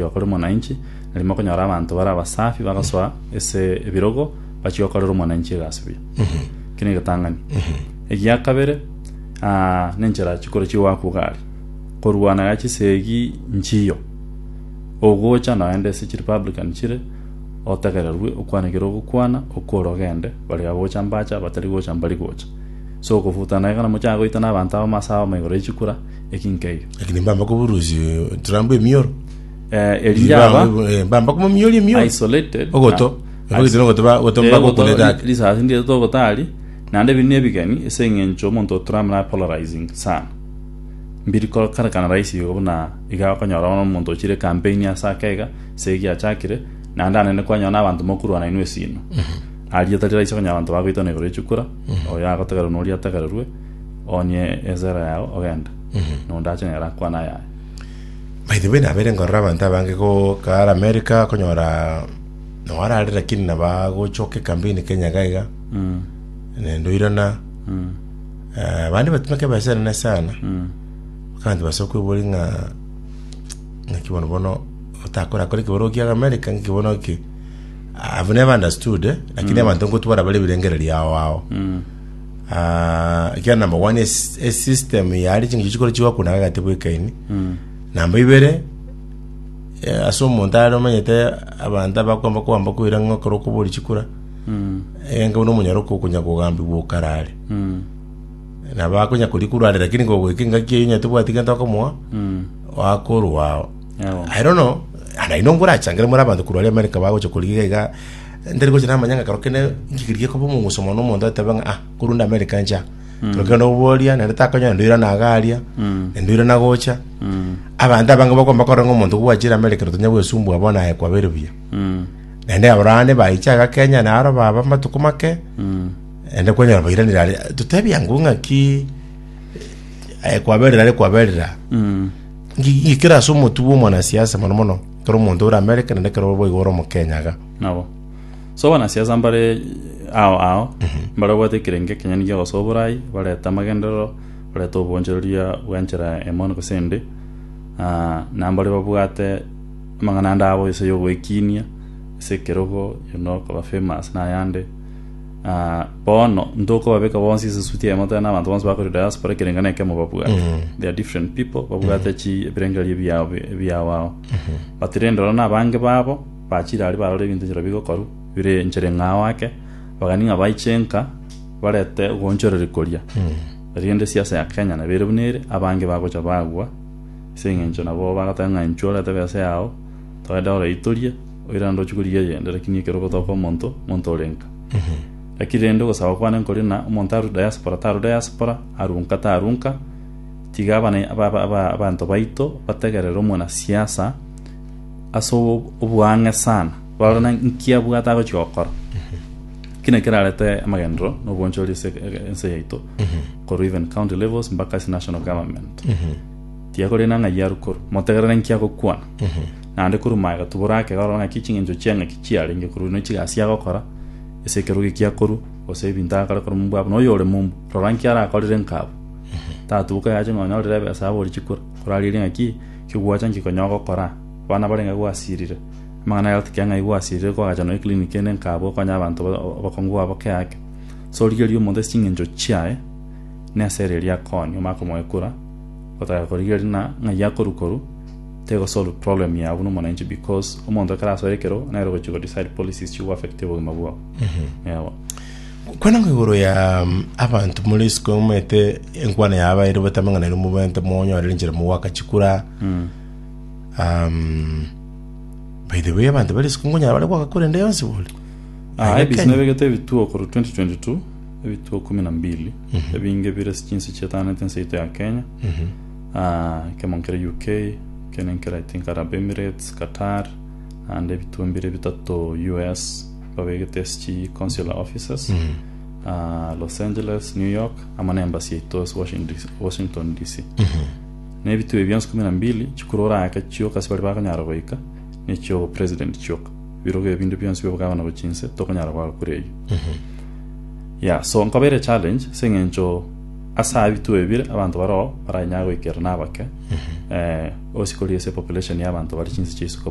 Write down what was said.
Oyo okore omwananchi, nari mokonyora abanto bare abasafi bagasoa ase ebirogo bachia gokorera omwananchi egasi buya. Eki negetang'ani. Egia kabere, ah, nenchera chikoro chi'ogoakwa gari. Korwana iga chisegi nchiyo. Ogocha noende ase chirepublican chire, otegererwe okwane ekero ogokwana, okore ogende, bari agocha mbacha, batari gocha mbari gocha. So okofutana iga namochaka goitana abanto abamo ase abamo igoro y'echikura, eki nkeiyo. Lakini mbamba koburusia eturambo emioro. Eh, eri njaba Eh, mbamba komomioria emioro. isolated. Ogoto. na- Ebagete nogoto ba- goto Eh, mbaba ogoto, okoneta ake. risasi ndire togotari naende ebi nebigeni ase eng'encho omonto otura muna polarizing sana mbiri kokarekana rahisi igo buna iga okonyora bono omonto ochire campaign ase ake iga ase egiachakire naende ande naende kwanyora na abanto mokorwana inwe esino aria tari rahisi okonyora abanto bagoitana igoro ya chikura oyo agotegererwa na oria atagererwe Oonye esera yao ogende, na onde ache nere akwane ayaye. By the way, nabere ngorora abanto abange gokara America, konyora noarare lakini nabagochoka ekambini Kenya iga iga, nende oirana eh, abande batimeka ebesa enene sana, kandi base okwebori ng'a ng'aki bono bono otakora kore keboro ogiaga America ng'aki bono ki I've never understood eh, lakini abanto ngotwara bare ebirengererio ao ao Ah, ekiagera namba one es- esystem yare chingicho chikore chigokuna gagati bwekaini namba ibere eh, ase omonto are omanyete abanto abakwamba kwamba koira ng'a okore okobori chikura enga buna omonyaro kokonya kogambigwa okarare nabo akonya kori kurware lakini gogoika engaki eyo onye tobwati gento okomoa wakorwao Yabo. I don't know naino ngorachangere more abanto kurwari America bagocha koriga iga Ntari gocha namanya ng'a kero kende inki keria gekoba omoguso mono omonto atebe ng'a ah, korende America ncha. Kero kende oboria, naende takonyora naende oirana iga aria, naende oirana gocha. Abanto abange bakomba korora ng'a omonto gwachire America ere tanya gwesumbua bono aye kwabeire buya. Naende abarwani baicha iga Kenya naro baba amatuko make, naende kwanyora bairanire aria. Totebi angwe ng'aki aye kwaberire are kwaberire aa. Inki inki kere ase omotuo bwa omwanasiasa mono mono Kera omonto ore America naende kera obo boigo ore omokenya iga. Nabo. So abanasiasa mbare ao ao, mbare obwate ekerengo ekenyene gia ogosoa oborai, barete amagenderero, barete obwoonchoreria bw'enchera emo gose ende, ah, na mbare babwate amang'ana ande abo ase y'ogoekiinia, ase ekerogo, you know, koba famous na ayande. Na bono ntokobabeka bonsi ase esuti eyemo tari nabanto bonsi bakore diaspora ekerengo nekemo babwate they are different people babwate chi ebirengererio ebiao ebiao ao but rende oro nabange babo bachire aria barore ebinto nchera bigokoru bire enchera eng'ao ao ake bagani ng'a baiche nka barete ogoonchoreria koria erinde siasa ya kenya nabo ere buna ere abange bagocha bagwa ase eng'encho nabo bagoteba ng'a inchuo orete besa yao toende oroitorie oirande ochie korigia eyende, lakini ekero ogotoka omonto, omonto ore nka. Lakini rende ogosaba kwane nkori ng'a omonto aru diaspora taru diaspora, aru nka taru nka, tiga abana aba- aba- aba- abanto baito bategerere omwana siasa ase o- oboang'e sana, barore nki abwate agochia gokora. Ki naki kerarete amagenderero na obwanchori ase e- ense yaito, korwa even county levels mpaka ase national government. Tiga korende ng'a ng'ai aru korwa, motegerere nki agokwana. naende korwa magega tibora ake korora ng'aki ching'encho chi'eng'aki chiarenge korwa ino chigasi agokora, gose ekerogo ekiya korwa, gose ebinto agakora korwa momba abo. Na oyore momba, rora nki arakorire nkabo. Tatuboka yache ng'a onyorire ebesa abori chikura, korarigerie ng'a ki kigwacha nki konya ogokora. Abana barenge gwasirire, amang'ana ayao tikera ng'ai gwasirire kwagacha nonya eclinic ende nkabo okonye abanto ba- obokongu bwabo boke ake. Ase origerie omonto ase ching'encho chiaye, nesere eria akooni, omanye komoekura, otagera korigereria na ng'ai akorwa korwa, Teko solve problem yabo na omonanchi because omonto ekero asoa ekero nere ogochia go decide policies chigo affect obogima bwao. Yabo. Kwana ng'a igoro ya mm, abanto more isiko omanyete enkwana ya abairi obatamenga nairwe mobente monyorere enchera mogoaka chikura um, by the way abanto bare isiko nkonyara bare goaka kura ende yonsi bori Ah, Aye ebisi Kenya. nebegete ebituo korwa 2022 ebituo kumi na mbili ebinge bire chinse chietanete nseito ya kenya Ekemo nkere UK, ekende nkere I think Arab Emirates, Qatar, naende ebitunwa bire bitato US babegete ase chi consular offices. Ah, Los Angeles, New York, amo na embassy yaito ase Washington DC- Washington DC. Na ebituo ebi bionsi kumi na mbili chikuru oraake chioka ase baria bakonyara goika, nechia obo president chioka. Ebirogo ebi binde bionsi bia obogavana bwa chinse tokonyara koaga kore eyio. Yeah, so nkobeire challenge ase eng'encho ase abia twebire abanto baroo baranyare goikerana abake eh, osikori ase population y'abanto bare chinse chia isuka